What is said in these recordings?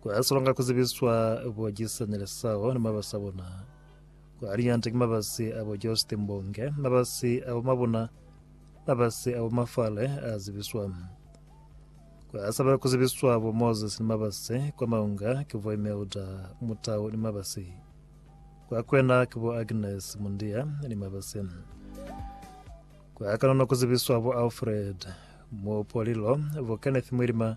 Kwa salonga ku zibiswa bo Gisani Lesao ni mabasi a bona. Kwa liñanta ki mabasi a bo Josti Mbonge, mabasi a bo Mabuna, mabasi a bo Mafale a zibiswa. Kwa saba ku zibiswa bo Moses ni mabasi, kwa maunga ki bo Imelda Mutau ni mabasi. Kwa kwena ki bo Agnes Mundia ni mabasi. Kwa kanono ku zibiswa bo Alfred Mupolilo, bo Kenneth Mwilima,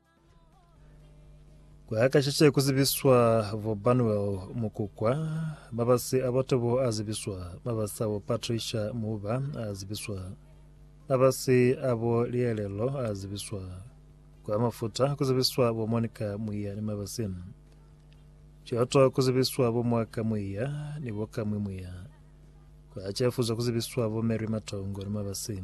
Kuakashishe kuzibiswa vo Banuel Mukukwa, mabasi a batobo azibiswa, mabasi abo Patricia Muba azibiswa, mabasi abo Lielelo azibiswa, kwa mafuta kuzibiswa bo Monica Mwiya ni mabasi Choto kuzibiswa bo Mwaka Mwiya ni bo Kamwi Mwiya, kwa Chefuzo kuzibiswa bo Mary Matongo ni mabasi